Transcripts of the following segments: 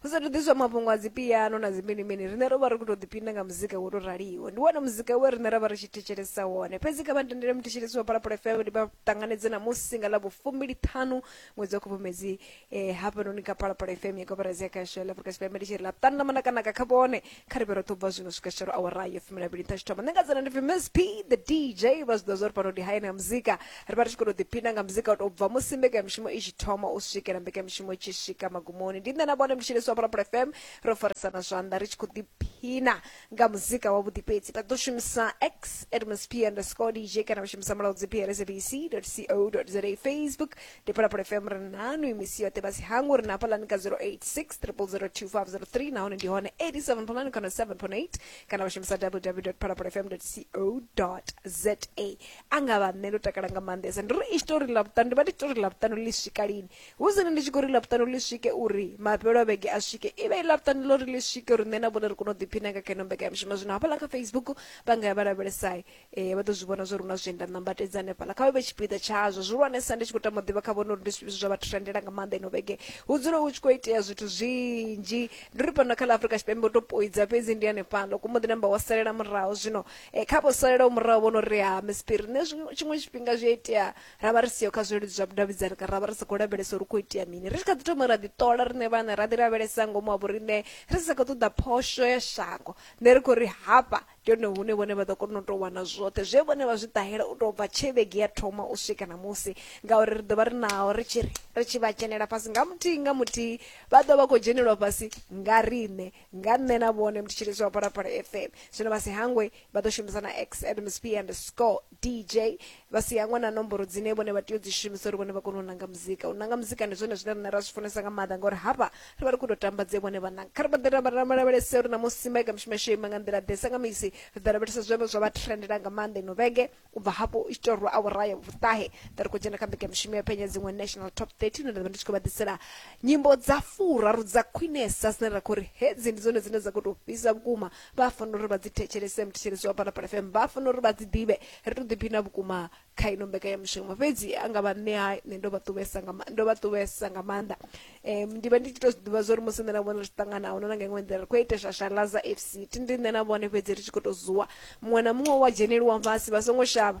hu sathu ḓiswa mafhungo a dzipiano na dziminimini riṋe ro vha ri khou tou ḓipinda nga muzika wo tou raliho ndi wone muzika we riṋe ra vha ri tshi thetshelesa wone fhedzi kha vha ntendele muthetshelesi wa phalaphala fm ndi vha ṱanganedze namusi nga ḽa vhufumbili ṱhanu ṅwedzi wa khubvumedzi um hafhanoni kha phalaphala fm ya koporasi ya khasho ya ḽa afrika tshipembe ndi tshi ri ḽa ṱanu ḽa manakanaka kha vhone kha ri vhero ṱubva zwino swika tshitshelo awara yo fumi na vhili nṱha tshithoma nṋe nga dzina ndi pfi miss p the dj vha zwi ḓo zwa uri pano ndi hayani ya muzika ri vha ri tshi khou tou ḓiphina nga muzika u tou bva musi mbekanyamushumo i tshi thoma u swikela mbekanyamushumo i tshi swika magumoni ndi nṋe na vhone mtshiliswa phalaphala fm ro farisana zwanḓa ri tshi khou ḓiphina nga muzika wavhuḓi fhedzi vha ḓo shumisa x at miss p underscore dj kana vha shumisa mulaudzi plsabc co za facebook ndi pala pala fm ri nanu imisi yoṱhe vha si hangu ri na phalani ka 0860002503 nahone ndi hone 87 phalani kana 7.8 kana vha shumisa www phalapalafm co za a nga vha nṋe ndo takala nga maanḓesa ndi ri i tshitori ḽa vhuṱanu ndi vha ndi tshitori ḽa vhuṱanu ḽi swika lini hu zwine ndi tshi khou ri ḽa vhuṱanu ḽi swike uri mafhelo a vhege a swike i vhe i ḽa vhuṱanu ḽo ri ḽi swike uri nṋe na vhone ri kone u ḓiphina nga kha ino mbekanyamushumo zwino hafhaḽa kha facebook vha nga ya vha lavhelesai ee vha ḓo zwi vhona zwa uri hu na zwienda nambatedza hanefhaḽa kha vha vhe tshipiḓa tshazwo zwihulwanesa ndi tshi khou tama u ḓivha kha vhone uri ndi zwifhio zwa vha trendela nga maanḓa ino vhege hu dzule hu tshi khou itea zwithu zwinzhi ndi ri fhano kha ḽa afrika tshipembe u to poidza fhedzi ndi hanefhaḽa ku muḓi namba wa salela muraho zwino eh, kha vho salelaho muraho vhono ri ha mispiri nṋe zwi- tshiṅwe tshifhinga zwi a itea ra vha ri siho kha zwileludzi zwa vhudavhidzani kana ra vha ri sa khou lavhelesa uri hu khou itea mini ri tshi kha ḓi thoma ra ḓi ṱola riṋe vhane ra ḓi lavhelesa ngomu ha vhoriṋe ri sa khou ṱoḓa phosho ya shango nṋe ri khou ri hafha Ndi hone hune vhone vha ḓo kona u tou wana zwoṱhe zwe vhone vha zwi ṱahela u tou bva tshe vhege ya thoma u swika ṋamusi ngauri ri ḓo vha ri naho ri tshi ri ri tshi vha dzhenela fhasi nga muthihi nga muthihi vha ḓo vha khou dzhenelwa fhasi nga riṋe nga nṋe na vhone mthetshelesi wa phalaphala fm zwino vha si hangwe vha ḓo shumisa na x admsp and score dj vha si hangwe na nomboro dzine vhone vha tea u dzi shumisa uri vhone vha kone u nanga muzika u nanga muzika ndi zwone zwine rine ra zwi funesa nga maanḓa ngauri hafha ri vha ri khou tou tamba dze vhone vha nanga kha ri vha ḓe lavhelese uri ṋamusi maika mishumo yasho ima nga nḓila ḓe sa nga misi ri ḓo lavhelesa zwevho zwa vha trendela nga maanḓa ino vhege u bva hafho i tshi tou rwa awara ya vhuṱahe ḓa ri khou dzhena kha mbeka mishumo ya phenya dziṅwe national top 30 ine nda vha ndi tshi khou vha ḓisela nyimbo dza furaru dza khwinesa dzine ra khou ri hedzi ndi dzone dzine dza khou tou fhisa vhukuma vha fanela uri vha dzi thetshelese muthetshelesi wa phalaphala fm vha fanela uri vha dzi ḓivhe ri to ḓiphina vhukuma kha ino mbekanyamushumo fhedzi a nga vha nṋe ha nṋe ndo vha ṱuvhesa nga ma- ndo vha ṱuvhesa nga maanḓa um ndi vha ndi tshi to zwi ḓivha zwori musi nṋe na vhone ri tshi ṱangana ahuna na nga iṅwe nḓila ri khou ita shashalaza f c thi ndi nṋe na vhone fhedzi ri tshi khou to zuwa muṅwe na muṅwe wa dzheneliwa fhasi vha songo shavha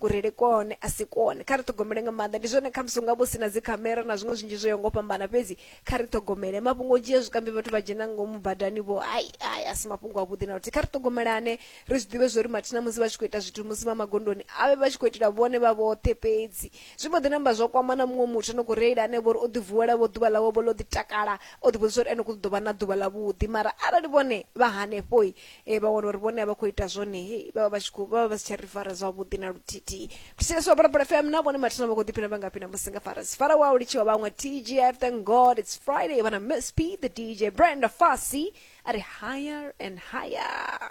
kurele kone a si kone kha ri ṱhogomele nga maanḓa ndi zwone khamusi unga vho sina dzikhamera na zwiṅwe zwinzhi zwo yo ngo fhambana fhedzi kha ri ṱhogomele mafhungo o dzhia zwikambi vhathu vha dzhena ngomu badani vho ai ai a si mafhungo avhuḓi na luthihi kha ri ṱhogomelane ri zwi ḓivhe zwori mathina musi vha tshi khou ita zwithu musi vha magondoni a vhe vha tshi khou itela vhone vha vhoṱhe fhedzi zwi mbo ḓi namba zwa kwama na muṅwe muthu no khou reila ane vhori o ḓi vuwela vho ḓuvha ḽawe vho ḽo ḓi takala o ḓi vhudzisa uri ene ku ḓo vha na ḓuvha ḽavhuḓi mara arali vhone vha hanefhoi e vha wana uri vhone a vha khou ita zwone hei vha vha vha tshi khou vha vha vha si tsha ri fara zwavhuḓi na luthithihi thusesa parapara fm na vhone mathina vha khou ḓiphina vha ngafhi na musi nga farasi fara wa u litshiwa vhaṅwe tgf thank god it's friday vhana miss p the dj brenda fasi a ri higher and higher